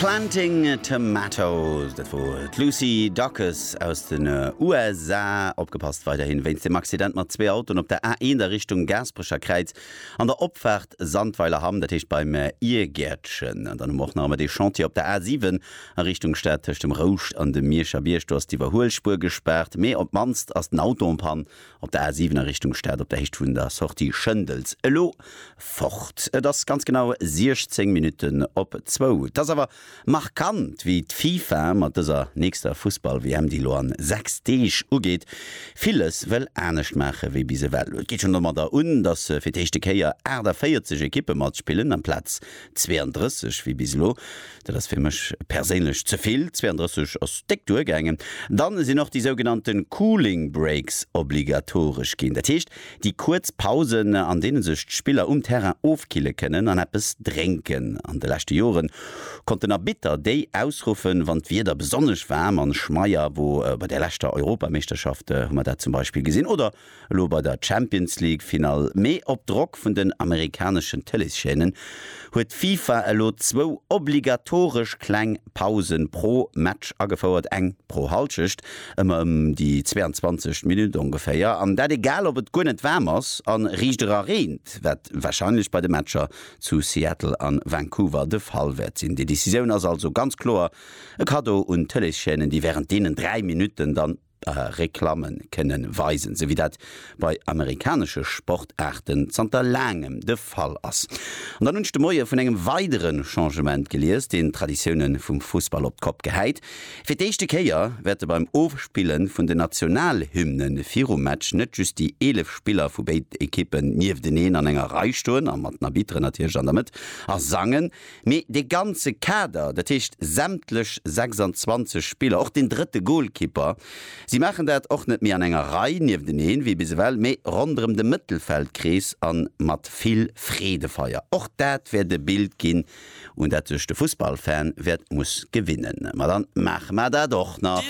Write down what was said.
Planting a Tomato, dat wor d'Lucy Dacus aus den USA. Opgepasst weiderhin wéinst dem Accident mat zwee Autoen op der A1 a Richtung Gaasperecherkräiz an der Opfaart Sandweiler Hamm, dat heescht beim Iergäertchen. An dann hu mer och nach ëmmer dee Chantier op der A7 a Richtung Stad tëscht dem Rouscht an dem Mierscher Bierg. Do ass d'Iwwerhuelspuer gespaart, mee op d'mannst ass den Auto en Panne. Op der A 7 a Richtung Stad op der Héicht vun der Sortie Schëndels. Elo fort. Et ass ganz genau 16 Minutten op zwou. Et ass awer markant, wéi d'FIFA mat dëser nächster Fussball-WM, déi elo an 6 Deeg ugeet, villes wëll anescht maache wéi bis ewell. Et geet schonn domadder un, datt fir d'éischte Kéier 48 Ekippe matspillen amplaz 32 wéi bis elo. Dat ass fir mech perséinlech ze vill, 32 ass déck duergaangen. Dann sinn och déi sougenannte Cooling Breaks obligatoresch ginn. Dat heescht, déi kuerz Pausen, an deene sech d'Spiller um Terrain ofkille kënnen an eppes drénken. An de leschte Joren konnt den Arbitter déi ausruffen, wann d'Wieder besonnesch waarm an schmeier wor. Bei der leschter Europameeschterschaft hu mer dat zum Beispill gesinn. Oder Elo bei der Champions League Finall, mee op Drock vun den amerikaneschen Tëleeschaînen, huet d'FIFA elo zwou obligatoresch kleng Pausen pro Match agefouert, eng pro Hallschecht, ëmmer ëm déi 22 Minutt ongeféier, an dat egal ob et guer net waarm ass an riicht era reent, wat wahrscheinlech bei de Matcher zu Seattle an Vancouver de Fall wäert sinn. Déi Decisioun ass also ganz kloer e Cadeau un d'Tëleeschaînen, déi während deenen 3 Minutten dann. Reklammen kënnen weisen, sou wéi dat bei amerikanesche Sportaarten zanter laangem de Fall ass. An dann hunn ech de Moie vun engem weidere Changement gelies, deen d'Traditioune vum Fussball op d'Kopp gehäit. Fir d'éischte Kéier wäerte beim Ofspille vun den Nationalhymne virum Match net just déi 11 Spiller vu béiden Ekippen niefteneen an enger Rei stoen, a mat den Arbitteren natierlech an der Mëtt, a sangen. Mee dee ganze Kader, dat heescht sämtlech 26 Spiller, och deen drëtte Golkipper, si maachen dat och net méi an enger Rei niefteneen, wéi bis ewell, mee ronderëm de Mëttelfeldkrees a mat vill Freedefeier. Och dat wäert e Bild ginn, un dat sech de Fussballfan wäert muss gewinnen. Ma dann maache mer dat och nach.